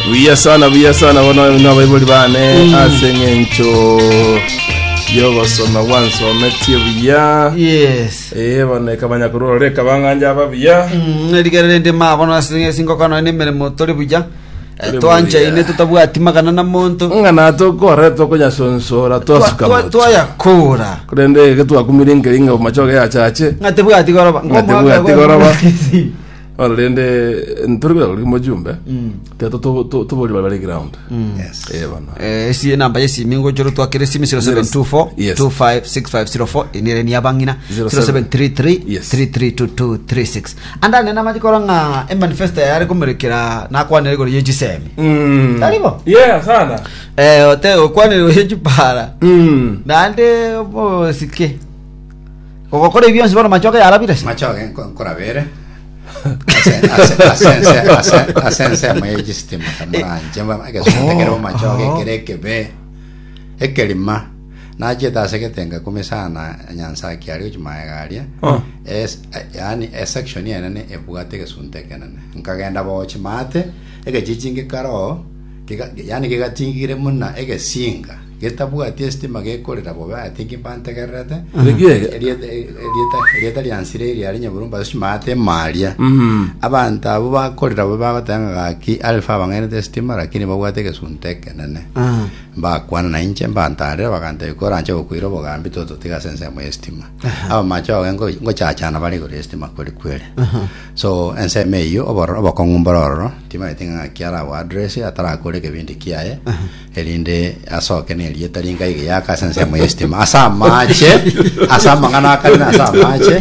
buya sana buya sana bono na abaibori bane ase eng'encho yogosoma gwansometie buya yes ee bono ekamanya korora reka bang'anja aba buya Mm, erigere rende ma bono ase singokana ne emeremo tore buya Eh, Tore twanchaine buya. tutabwati magana na monto ng'ana tokore tokonyasonsora twasuka Twa- moto twayakora korende ege twakumire nkeri ng'a machoge yachache ng'ate bwati goroba Ng'ate bwati goroba. Bono rende ntore bwegoro rimo jumbe teto to- to- tobori bare bare ground Yes. Eh, bono Eh, esi enamba ya esimi ngochoro twakere esimi 0724 Yes. 256504 enere ni abang'ina 07. 0733 Yes. 332236 anda nena machikoro ng'a emanifesto yare komerekera nakwanire igoro yechisemi Mm. Taribo? Yeah, sana eh ote okwanire igoro yechipara Mm. naende bosike Ogokora ebi bionsi bono machoka yarabire? Machoka nko- nkoraba ere ase ase- ase ense- ase- ase ensemo ya echistima kamoranche egesunte kere bomachoka ekere ekebe ekerima nachete ase egetenga kume sana nyansaki aria gochia maega aria Oh. Es- yaani esection enene ebwate egesunte ekenene nkagenda bochi maate egechichingi karo Kega- yaani kegatingire buna egesiinga getabwati esitima gekorera bobe ati ekibantegererete Rigiya. Erieta- erieta erieta ria nsire eria ari nyaburumba ase chimaate emaaria Mm. abanto abo bakorera bobe bagoteba ng'a gaki alfa abang'ainete esitima lakini babwate egesunte ekenene Ah. mbakwana na inche mbantarire bagantebia kore anche gokoira obogambi tototiga ase ensemo y'esitima abamache bago ngochachana bare igoro y'esitima kori kwere So ensemo eyio obororo obokong'u mbororo timaete ng'aki arabo address atarakore ekebindi kiaye erinde asoke nerieta ringa iga yaka ase ensemo y'estima ase amache ase amang'ana akare na ase amache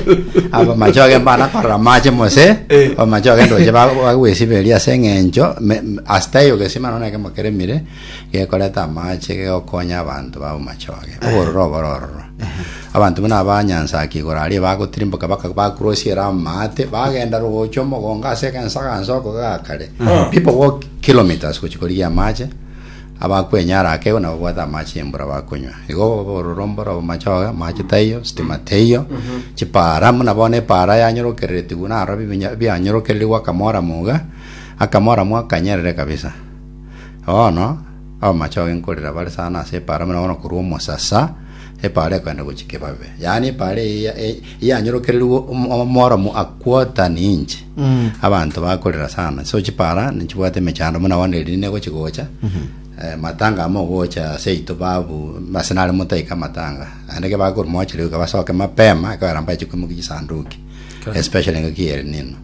aba amache ogemba ana korora amache mose Eh. amache ogenda oche bagwesiberia ase eng'encho me- m- asita eyo gesima nonya kemo keremire gekoreta amache gegokonya abanto babo mache oge obororo obororo Abanto buna aba nyansa ake igoro aria bagotirimboka baka- bakurosia Rama ate, bagenda rogochwa omogongo ase egensagansa oko gakare. People walk kilometres gochia korigia amache, abakwenyara ake igo nabo babwate amache y'embura bakonywa. Igo obororombo orobo machoge, amache taiyo, sitima teiyo, chipaara buna bono epaara yanyorokereretigwe naro bibinya- bianyorokererigwe akamoramu iga, akamoramu akanyerere kabisa. Bono, Abamache ao enkorera bare sana ase epaara buna bono korwa omosasa, epaara ekogenda gochia kebabe. Yaani epaara eye ya- e- yanyorokererwe om- omworomo akwota ninche. Abanto bakorera sana. So chipaara nchibwate emechando buna bono erinde negochia gocha. Eh, matanga amo ogocha ase yaito babu ase nare motaika amatanga. Naende ekero bakorwa mochire iga basoke mapema ekogera mbache koimokia chisanduki. Especially engaki ya El Nino.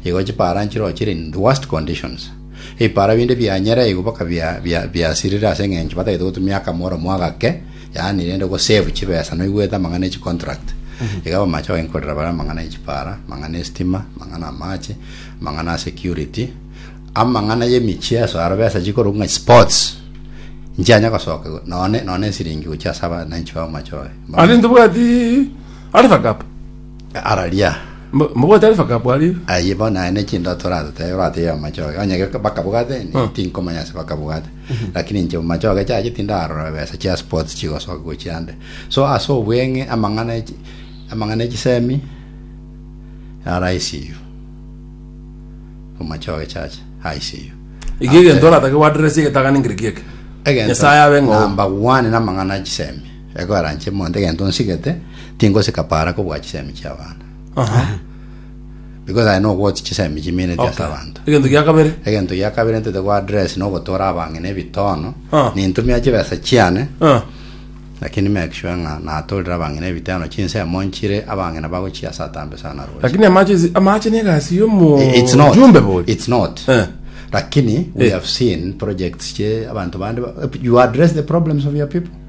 Igo chipaara nchirochire in the worst conditions. Ebipara binde bianyara igo boka bia- bia- biasirire ase eng'encho batagete gotumia akamoromo agake, yaani rende gosave chibesa noigwete amang'ana ya chicontract. Iga abamache bagenkorera bare amang'ana ya chipara, amang'ana ya estima, amang'ana ya amache, amang'ana ya security, amang'ana ya emicheso aro besa chikorwa ng'a sports, nchianya gosoka igo none none esiringi gochia ase abananchi b'amache baye. Are ntobwati Alpha Cup. Araria. Mbo- Mbogotari bakabwari. Aye bono aya ne chinto toratotebe batebia amachoge onye ge- bakabugate ni- Mm. tinkomanya ase bakabugate lakini inche machoge chiaye tindarora besa chia sports chigosoka gochia nde so ase obweng'e amang'ana echi- amang'ana echisemi ara ICU omachoge chacha ICU Ege egento oratake gwaderesi egetagani nkereki eke. egento Nyasaye abe ng'oo. number one namang'ana echisemi Ekoaranche monto egento nsigete, tingosika para kobua chisemi chi'abanto. Aha. Because aye nogwoti chisemi chimineti ase Okay. abanto. Egento gia kabere. Egento gia kabere ntete gwa address nogotora abang'ina ebitono. Ah. Nintumia chibesa chiane, Ah. lakini make sure ng'a natorire abang'ina ebitono chinsemo nchire abang'ina bagochia ase atambe sana roche. Lakini amache amache ne gasi yo mo. I- it's not Jumbe boy. it's not Eh. lakini we Eh. have seen projects che abantu bande ba- you address the problems of your people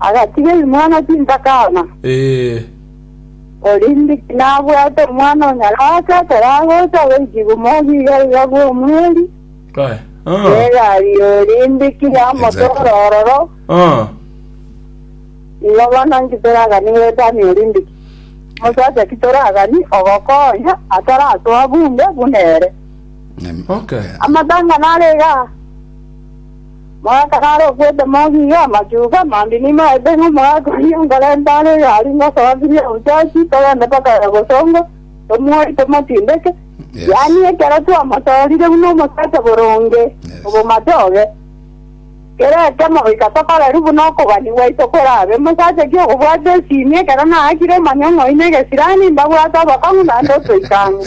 Agatiga rimwana tintakana. Ee. Korende tinabwate omwana onyarake akore agocha goiki komogia igaiga bw'omweri Kae. Ah. bw'egari orende ki yamotora ororo, Ah. nigo bono nki toragani goetania orende ki omosacha ki toragani ogokonya ataratoa bunde buna ere. Okay. Amatang'ana are igaa. Mogaka naro okwete mogiga, amachuka, mambia nimo aete ng'a omogaka oyio nkorente are iga aria ngosoa biria obuchachi, togende mpaka ere bosongo, tomuoe, tomotindeke, yaani ekero twamosoorire buna omosacha boronge, obomatoge. Kera ekemo goika tokoreri buna okogania gwaito korabe. Omosacha ki okobwata esimi ekero naakire omanye ng'oine egesirani, mbabwate obokong'u naende otoika ang'e.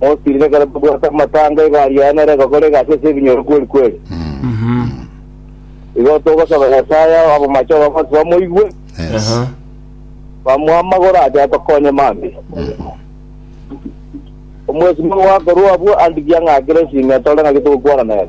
Mosirire ekero tobwate amatanga, igo aria aye nere egokora egasi ase ebinyoro kweri-kweri. Igo togosaba Nyasae ao abomache obagonsi bamoigwe, Yes. bamoe amagoro ache atokonye mambia. Omwesimo goakorwa abwo andikia ng'akire esinyo etore ng'aki togokwana nere.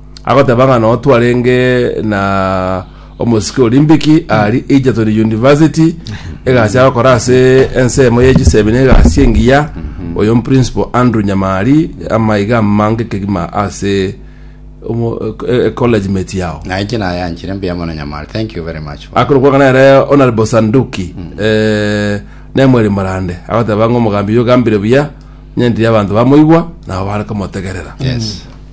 Agoteba ng'a no twarenge na omosike Olimpiki ari Egerton University egasi agokora ase ensemo ye chisemi na egasi engiya oyo Principal Andrew Nyamari amaiga amange kegima ase omo- e- e- college mate yao naye ki nayanchire mbuya mono nyamari thank you very much for- akoro kwangana ere honorable sanduki eh, nemweri morande agoteba ng'a omogambi oyo ogambire buya nyentiri abanto bamoigwa nabo bare komotegerera yes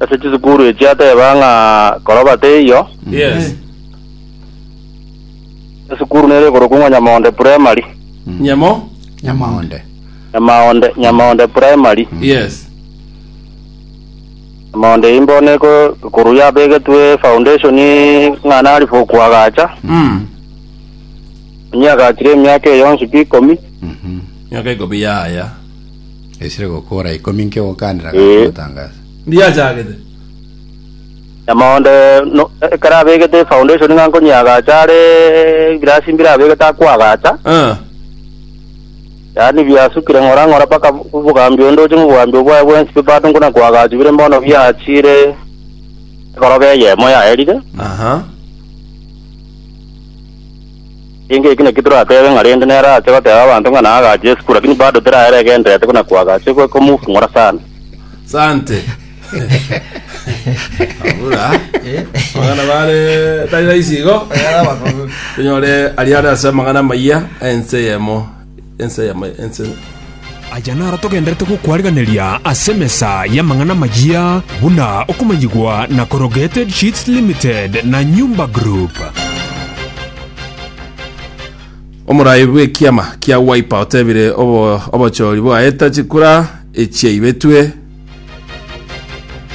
Ase chisukuru echi ateba ng'a koroba teiyo. Yes. Esukuru nere ekorokwa ng'a Nyamaonde Primary. Nyamo? Nyamaonde. Nyamaonde, Nyamaonde Primary. Yes. Nyamaonde eyi mbono eko ekuru yabegetwe foundation ng'a nari for koagacha. Mm. Onye agachire emiaka eye yonsi pi ikomi. Miaka ikomi yaya. Esire gokora ikomi nke gokandera Eh. gaki gotangasa. Ndiachagete. Nyamoonde no- ekero abegete efoundation ng'a nkonyeagacha are ebirasi mbire abegete akoagacha Ah. yaani biasukire ng'ora ng'ora mpaka obogambi onde oche ng'obogambi obwaye bwensi bipate nkuna koagachu bire mbono biachire egoroba eyemo yaerire Aha. Inga eki nakio toratebe ng'a rende nere ache goteba abanto ng'a naagache Yesu, lakini bado teraera egenderete buna kwagache goika komofung'ora sana. Sante. Abura. Abana bare tari raisi igo. Tunyore aria are ase amang'ana amayia ense eyemo. ense y'Amayia. Aya naro togenderete gokwarigereria ase emesa y'amang'ana amayia buna okomanyigwa na Corrugated Sheets Limited na Nyumba Group. Omorai bw'ekiama kia Wiper otebire obo, obochori bwaeta chikura echiaibetwe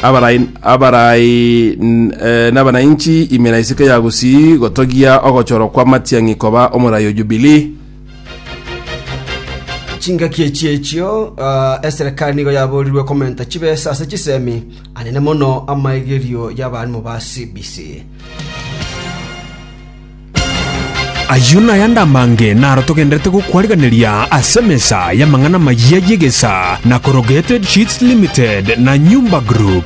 abarai, abarai n- eh, n'abanainchi imera isike ya Gusii gotogia ogochorwa kwa matiang'i koba omorai o Jubilee. Chingaki echi echio eserikari nigo yaborirwe komenta chibesa ase chisemi, anene mono amaigerio y'abaarimu ba CBC. Ayio nayande amange naro togenderete gokwarigereria ase emesa y'amang'ana amayia y'egesaa na korogeted sheets limited na nyumba group.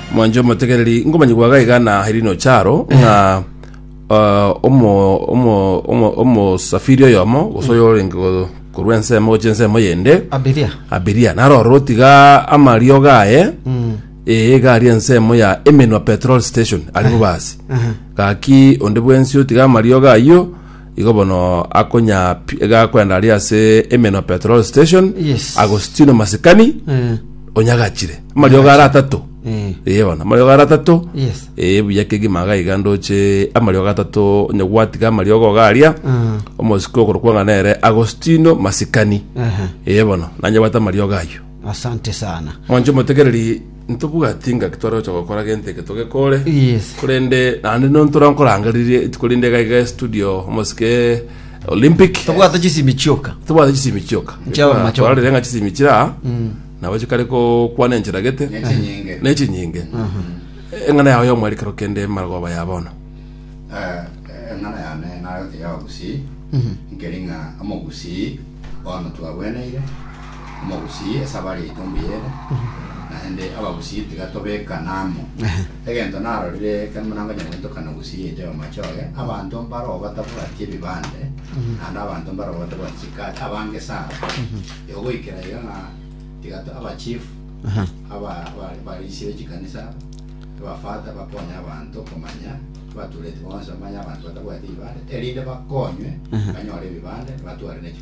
Mwanche omotegereri, nkomanyigwa iga iga na Hyrino Charo, ng'a ah, omo- omo- omo- omosafiri oyomo, gose oyo orenge go- korwa ensemo gochia ensemo eyende, abiria abiria narorwo tiga amariogo aye Mm. ee iga ari ensemo ya emenwa petrol station ari bobasi Aha. gaki onde bwensi otiga amariogo ayio Igo bono akonyapia iga akoenda aria ase Emeno Petrol Station Yes. Agostino Masikani Eh, onyagachire amariogo ara atato eh, eye bono amariogo ara atato yes. eye buya kegima iga iga ndoche amariogo atato onye gwatiga amariogo iga aria Ah, omosike okorokwa ng'a nere Agostino Masikani ehe. eye bono nanyebwate amariogo ayio Asante sana. mwanche omotegereri Ntobwati ngaki tware gocha gokora gento eke togekore. Yes. Korende naende no ntora nkorangererie etuko rinde iga iga studio omosike Olympic. Tobwate chisimi chioka. Tobwate chisimi chioka. Chiaba Ekero machoka. twarorire ng'a chisimi chira nabo chikare kokwana enchera gete. Nechinyinge. Nechinyinge. Eng'ana yao y'omweri kero kende magoba ya bono. Eh, eng'ana yane nayote ya obusii nkeri ng'a omogusii bono twagweneire omogusii ase abare etumbi ere, naende abagusii tiga tobekana amo, egento narorire ekero buna ngonya goetokana na ogusii yaito y'omochie oye, abanto mbaroo batabwati ebibande, naende abanto mbaroo batabwati chikaati, abange sana, igo goikera iga ng'a tiga to- abachief aba aba- abarisia be chikanisa, abafather bakonye abanto komanya, abatureti bonsi bamanye abanto batabwati ebibande, erinde bakonywe banyore ebibande, batware ne chi.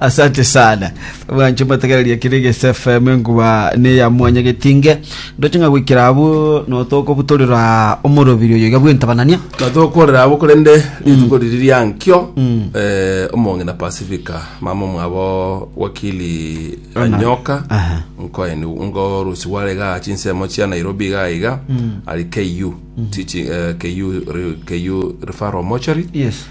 asante sana bwanche mbategereria kiri gese fm enkuba ne ya mwanya getinge ndoche ng'a gwikira abu notokobutorera omorobiri oyo iga bw'entabanania natokorera abo korende rituko riri riankio eh, omong'ina pacifica mama mwabo wakili anyoka Aha. nkoeni ngorusi gware ga chinsemo chia nairobi iga iga ari ku T- chi- eh, KU re- KU referral mochari yes